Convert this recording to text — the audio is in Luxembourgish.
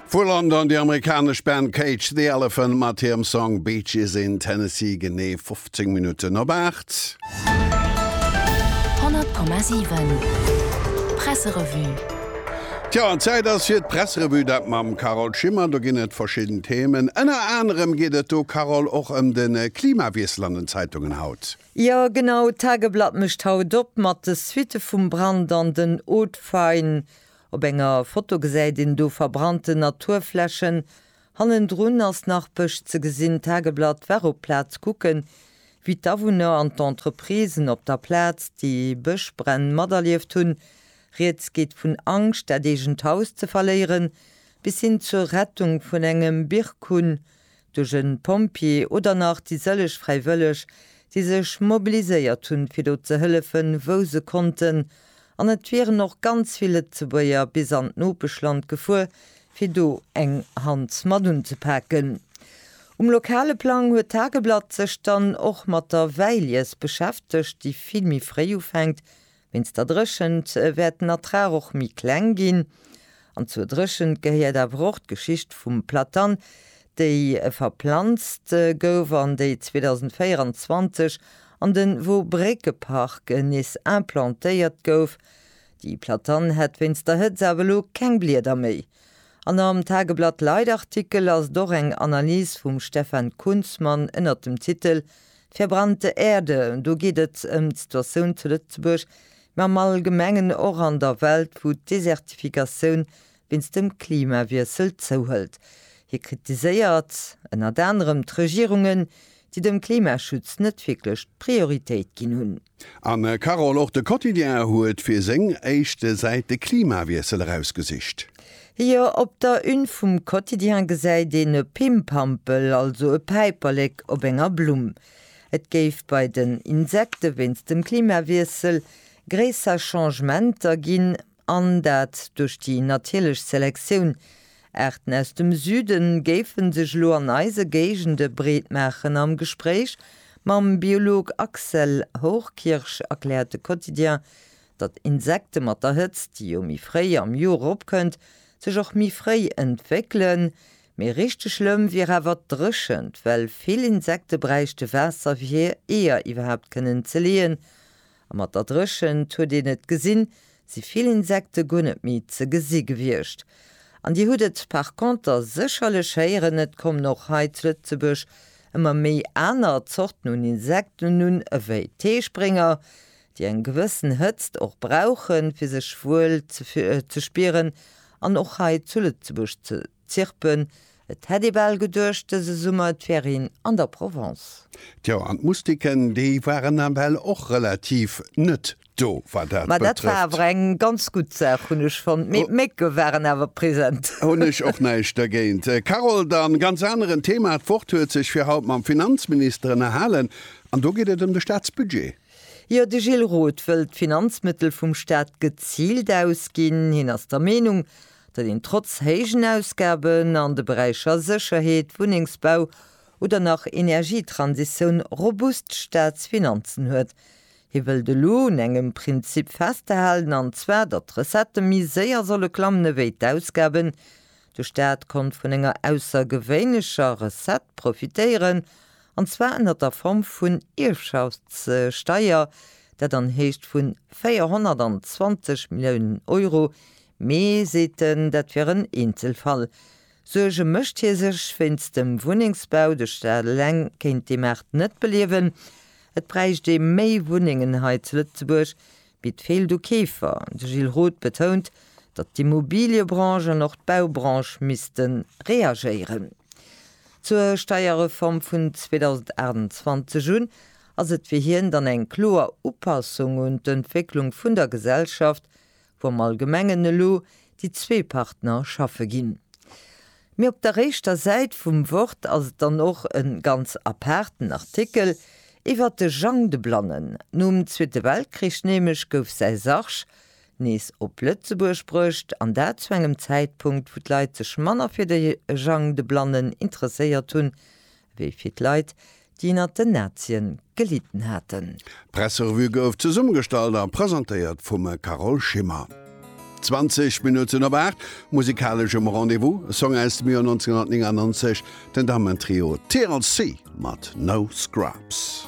Vu London déi amerikanesch Band Cage the Elephant mat hirem Song Beaches in Tennessee, genee 15 Minutten op 8. 100,7 Presserevue. Tjo, Zäit ass fir d'Presserevue, dat mam Carole Schimmer. Do ginn et verschidden Themen. Ënner anerem geet et do, Carole, och ëm de Klimawiessel an den Zeitungen haut. Jo, genau, d'Tageblatt mécht haut op mat de Suitte vum Brand an den Hauts-de-Faine. Op enger Foto gesäit een do verbrannten Naturflächen. Hannendrun ass nach Bësch ze gesinn. D'Tageblatt war op d'Plaz kucken, wéi d'Awunner an d'Entreprisen op der Plaz déi Bëschbränn materlieft hunn. Rieds geet vun Angscht, dat eegent Haus ze verléieren, bis hin zur Rettung vun engem Birkun, duerch en Pompjee oder nach déi sëlleg Fräiwëlleg, déi sech mobiliséiert hunn, fir do ze hëllefen, wou se konnten. An et wieren och ganz vill Lëtzebuerger bis an d'Nopeschland gefuer, fir do eng Hand mat unzepaken. Um lokale Plang huet d'Tageblatt sech dann och mat der Wäilies beschäftegt, déi vill méi fréi ufänkt, Wéinst der Dréchent wäert den Ertrag och méi kleng ginn. An zur Dréchent gehéiert awer och d'Geschicht vum Platan, déi verplanzt gouf an déi 2024 an de Wobréckepark nees implantéiert gouf. Déi Platan hätt wéinst der Hëtzt awer elo keng Blieder méi. An am Tageblatt-Lite-Artikel ass et och eng Analys vum Stefan Kunzmann ënnert dem Titel D'verbrannte Erde, do geet et ëm d'Situatioun zu Lëtzebuerg, mä am Allgemengen och an der Welt, wou d'Desertifikatioun wéinst dem Klimawiessel zouhëlt. Hie kritiséiert ënnert anerem d'Regierungen, déi dem Klimaschutz net wierklech d'Prioritéit ginn hunn. Anne Carol, och de Quotidien huet fir seng éischt Säit de Klimawiessel erausgesicht. Jo, op der Une vum Quotidien gesäit een e Pimpampel, also e Päiperlek op enger Blumm. Et géif bei den Insekte wéinst dem Klimawiessel gréisser Changementer ginn, an dat duerch déi natierlech Selektioun. Aarten aus dem Süde géife sech elo an eise Géigende breetmaachen. Am Gespréich mam Biolog Axel Hochkirch erkläert de Quotidien, datt Insekte mat der Hëtzt, déi jo méi fréi am Joer eropkënnt, sech och méi fréi entwéckelen. Mee richteg schlëmm wier awer d'Dréchent, well vill Insekte bräichte Waasser fir hir Eeër iwwerhaapt kënnen ze leeën. A mat der Dréchent huet een et gesinn, si vill Insekte guer net méi ze gesi gewiescht. An Dir hutt et par conter sécherlech héieren, et kommen och hei zu Lëtzebuerg ëmmer méi aner Zorten un Insekten un, ewéi d'Heesprénger, déi eng gewëssen Hëtzt och brauchen, fir sech wuel ze spieren an och hei zu Lëtzebuerg ze. Zirpen, Et hätt ee bal geduecht, dëse Summer et wär een an der Provence. Tjo, an d'Moustiquen, déi waren nawell och relativ net do, wat dat betrëfft. Ma dat war awer eng ganz gutt Saach, hunn ech fonnt. Mee d'Mécke waren awer present. Hunn ech och näischt dergéint. Carole, dann, ganz aneren Thema, D'Wort huet sech fir haut mam Finanzminister ënnerhalen, an do geet et ëm de Staatsbudget. Jo, de Gilles Roth wëllt d'Finanzmëttel vum Staat geziilt ausginn. Hien ass der Meenung, datt een trotz héijen Ausgaben an de Beräicher Sécherheet, Wunnengsbau oder nach Energietransitioun robust Staatsfinanzen huet. Hie wëllt elo un engem Prinzip festhalen, an zwar, datt d'Recettë méi séier solle klammen ewéi d'Ausgaben. De Staat konnt vun enger aussergewéinlecher Recette profitéieren, an zwar ënner der Form vun Ierfschaftssteier, dat an Héicht vun 420 Milliounen Euro Mee, seet en, dat wier en Eenzelfall. Suerge mécht hie sech wéinst dem Wunnengsbau, de Staat eleng kéint dee Maart net beliewen. Et bräicht ee méi Wunnengen hei zu Lëtzebuerg, mee et feelt u Keefer. De Gilles Roth betount, datt d'Immobiliëbranche an och d'Baubranche misste reagéieren. Zur Steierreform vun 2028 un ass et fir hien dann eng kloer Upassung un d'Entwécklung vun der Gesellschaft, wou am Allgemengen elo déi zwee Partner schaffe ginn. Mee op der réischter Säit vum Wort ass et dann och e ganz apaarten Artikel iwwert de Jang de Blannen. Nom Zweete Weltkrich nämlech gouf säi Sarg nees op Lëtzebuerg bruecht, an dat zu engem Zäitpunkt, wou d'Leit sech manner fir de Jang de Blannen interesséiert hunn, Wéi fir d'Leit, déi ënnert den Nazien gelidden haten. D'Presserevue gouf zesummegestallt a presentéiert vum Carole Schimmer. 20 Minutten op 8, musikalesch um Rendez-vous, e Song aus dem Joer 1999, den Dammentrio TLC mat No Scrubs.